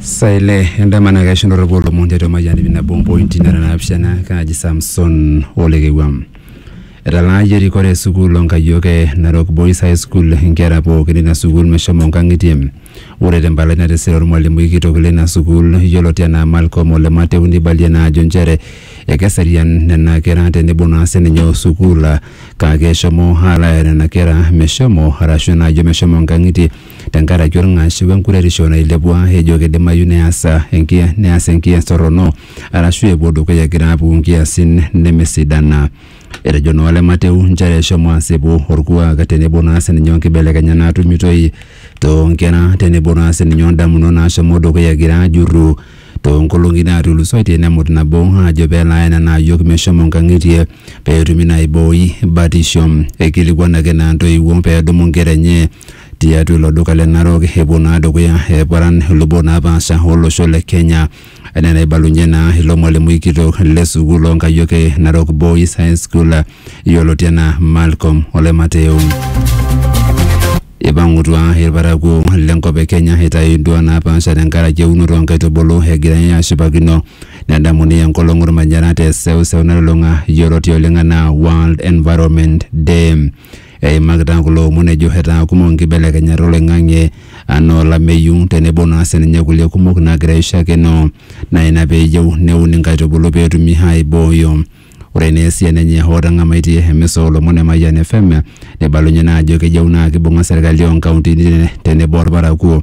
Saa ile endama naa keisho ntorroku olomon tiatua Mayian ip nabo ompointi nara naapishana kaaji Samson Olekewuam. Etalaayie erikore e sukuul o Nkayiok e Narok Boys High School inkera pookin ina sukuul meshomo nkang'itie. Ore te mpalai natisira olmalimui kitok leina sukuul yioloti anaa Malcom Ole Mateu neibalie naa ajo nchere ekeserian nena kera tenebo naa sininye o sukuul kake eshomo alaaya nena kera meshomo arashu naajo meshomo nkang'itie tenkaraki olng'ash we nkuretisho nailepua ejo keidimayu neas enkia- neas enkias torrono arashu epuo dukuya egira aapuku nkiasin nemesidana. Etejo naa Ole Mateu nchere shomo asipu olkuak tenebo naa sininye onkibelekenyat naatumitoi too nkera tenebo naa sininye ondamunot naashomo dukuya egira aajurru too nkolong'i naatulusoitie nemut nabo aajo pelo aya nena ayiok meshomo nkang'itie peetumi naa aibooi batisho. Eikilikuanaki naa ntoiwuo peedumu nkera enye tiatua ilo duka le Narok epuo naa dukuya eparan ilubot napaasha olosho le Kenya enaa enaibalunye naa ilo mwalimui kitok le sukuul oonkayiok e Narok Boys High School yioloti enaa Malcolm Ole Mateo. Ipang'utua irparakuo lenkop e Kenya eitayu induaa napaasha tenkaraki eunoto oonkaitubulu egirai aashipakino nedamuni enkolong ormanyara te seuseu nalulung'a yioloti oleng enaa World Environment Day. Eimakita kulo omon ejo etaa kumok nkibelekenyat oloing'ang'e anaa olameyu tenebo naa sininye kulie kumok naagira aishakino naa ina pee eyieu neuni nkaitubulu pee etumi aaibooyo. Ore naa esiana enye hoo etang'amaitie emisa oo lomon e Mayian FM neibalunye naa ajo keyieu naa keibung'a serkali oo nkauntini tenebo olparakuo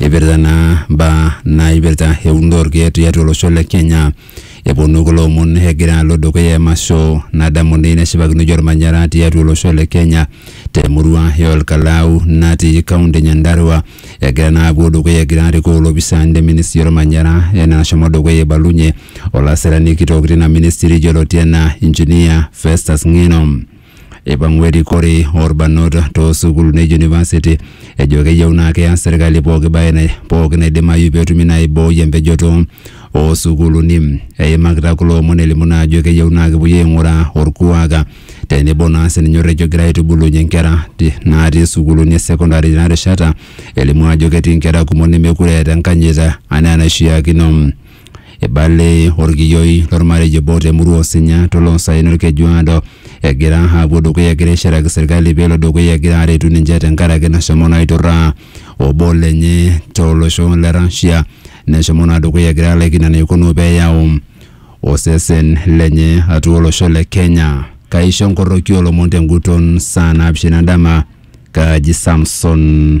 Eipirta naa mbaa naipirta eunoto orkeek tiatua olosho le Kenya. Eponu kulo omon egira alo dukuya emasho nadamuni neshipakinoi ormanyara tiatua olosho le Kenya te murua e Olkalau natii kaunti e Nyandarua. Egira naa apuo dukuya egira arikoo ilopisaani le ministry ormanyara enaa enashomo dukuya eibalunye olasirani kitok tina ministry yioloti enaa engineer Festus Ng'eno. Eipang'ua erikore oolbarnot too sukuulini e university ejo keyieu naa keas serkali pooki bae nai- pooki naidimayu petumi naa aibooi empejoto oo sukuuluni. Eimakita kulo omon elimu naa ajo keyieu naa kepuoi aing'uraa olkuak tenebo naa sininye orrekie ogira aitubulunye nkera ti- natii sukuuluni e secondary tena rishata elimu ajo ketii nkera kumok nemekure eeta enkanyit anaa enaishiakino. Eibale olkiyioi lolmarei obo te murua Osinya to loosaen Olkejuado egira aapuo dukuya egira aishiraki serkali pee elo dukuya egira aretu ninche tenkaraki nashomo naa aiturraa obo lenye to losho le Russia neshomo naa dukuya egira alaikino enaikununo pee eyau osesen lenye atua olosho le Kenya. Kaisho nkoroki oo lomon te nguton saa naapishana dama, kaaji Samson.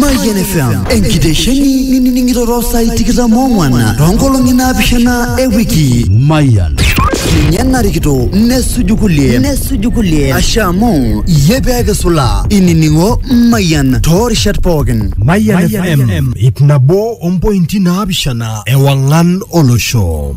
Mayian FM enkitesheni nining'ito too saai tikitam oong'wan too nkolong'i naapishana e wiki. Mayian. Ninye narikito nesuju kulie nesuju kulie asha amu iyie pee kisulaa inining'o Mayian too rishat pookin. Mayian FM ip nabo ompointi naapishana ewang'an olosho.